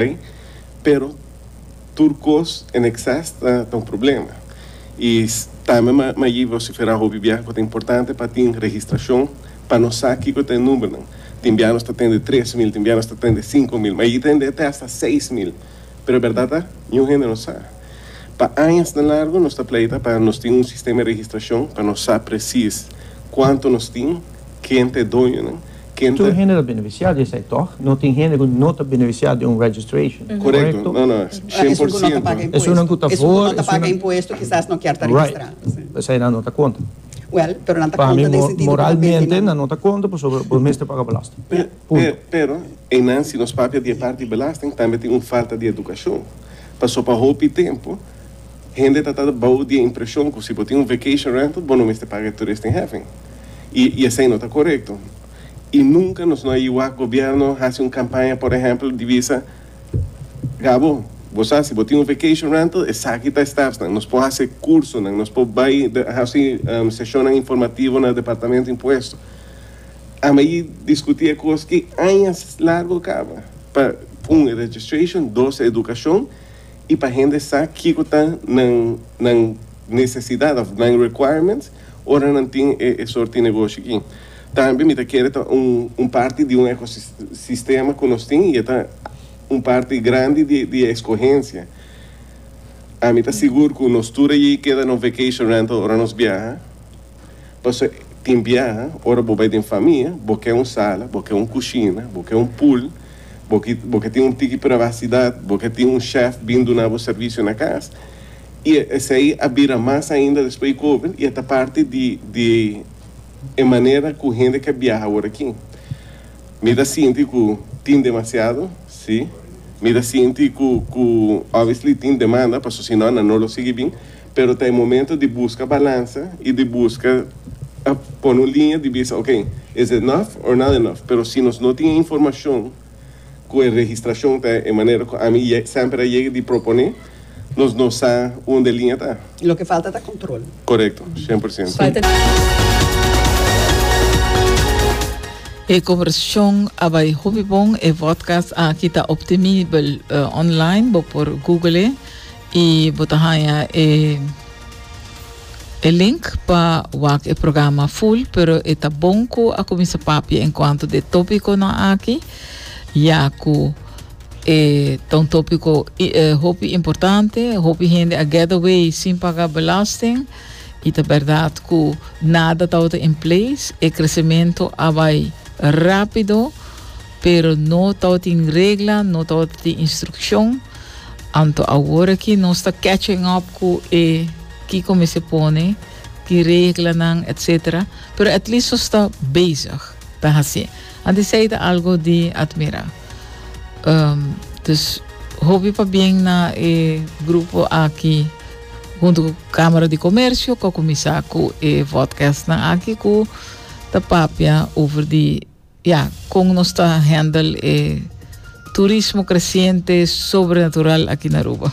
Bai, pero tur cos en exces ta ta un problema. Y tambe mi mi a yi vocifera hopi bia cu ta importante pa tin registracion pa nos sa kico ta e numbernan. Tin bia nos ta tende tres mil, tin bia nos ta tende cinco mil, mi a yi tende te hasta seis mil, pero e berdad ta niun hende no sa. Pa añasnan largo nos ta pleita pa nos tin un sistema di registracion pa nos sa precies cuanto nos tin, ken ta e doñonan. Ken ta. Tur hende ta benefisiá di esei, tòg? No tin hende ku no ta benefisiá di un registration, korekto? Esun ku no ta paga impuesto. Esunnan ku ta for. Esun ku no ta paga impuesto kisas no kier ta registrá. Right. Eseinan no ta konta. Wèl, pero nan ta konta den sentido. Pa mi moralmente nan no ta konta pasobra bo mester paga belasting. Punto. Pero einan si nos papia di e parti belasting tambe tin un falta di edukashon. Paso pa hopi tempu. Hende ta tabata bou di e impreshon ku si bo tin un vacation rental bo no mester paga e toeristenheffing, i i esei no ta korekto. I nunka nos no a iwak gobièrnu hasi un kampaña, por ehèmpel, di bisa, Gabo, bo sa si bo tin un vacation rental, esaki ta e stapsnan. Nos por hasi kursonan, nos por bai hasi seshonnan informativo na Departamento Impuesto. Ami a yu diskutí e kos ki añas largu kaba, pa un e registration, dos e edukashon, y pa hende sa kico ta nan nan necesidad of nan requirements ora nan tin e e soort di negoshi aki. Tambe mi ta kere ta un un parti di un ecosistema cu nos tin y e ta un parti grandi di di e escogencia. Ami ta sigur cu nos tur a yei keda nos vacation rental ora nos biaha. Paso tin bia ora bo bai den famia bo ke un sala, bo ke un kushina, bo ke un pool, bo ki bo ke tin un tiki privasidat, bo ke tin un shèf bin duna bo servisio na kas i esei a bira mas ainda despues di covid i e ta parti di di e manera ku hende ke biaha awor aki. Mi ta sinti ku tin demasiado, si, mi ta sinti ku ku obviously tin demanda paso si no nan no lo sigui bin. Pero ta e momento di busca balansa y di busca pone un liña di bisa ok, is it enough or not enough? Pero si nos no tin e informacion cu e registracion ta e manera cu ami semper a yega di propone, nos no sa unda e liña ta. Loke falta ta control. Corecto, cien por ciento. E conversacion a bay hopi bon. E vodcast aki ta optimibel online. Bo por google e. Y bo ta haña e e link pa wak e programa full, pero e ta bon cu a cuminsa papia en cuanto d'e topiconan aki, ya cu e ta un topico i- eh, hopi importante, hopi hende a get away sin paga belasting, y ta berdad cu nada tabata in place, e crecemento a bay rapido, pero no tawatin regla, no tawatin instruccion, anto awor aki nos ta catching up cu e kico mester pone, ki reglanan etc. Pero at least nos ta bezig ta haci. Ant esey ta algo di admira. Um, dus hopi pabien na e grupo aki hunto cu Camera di Comercio cu a cuminsa cu e vodcastnan aki cu ta papia over di Ya, kon nos ta handle e turismo kresiente sobrenatural aki na Aruba?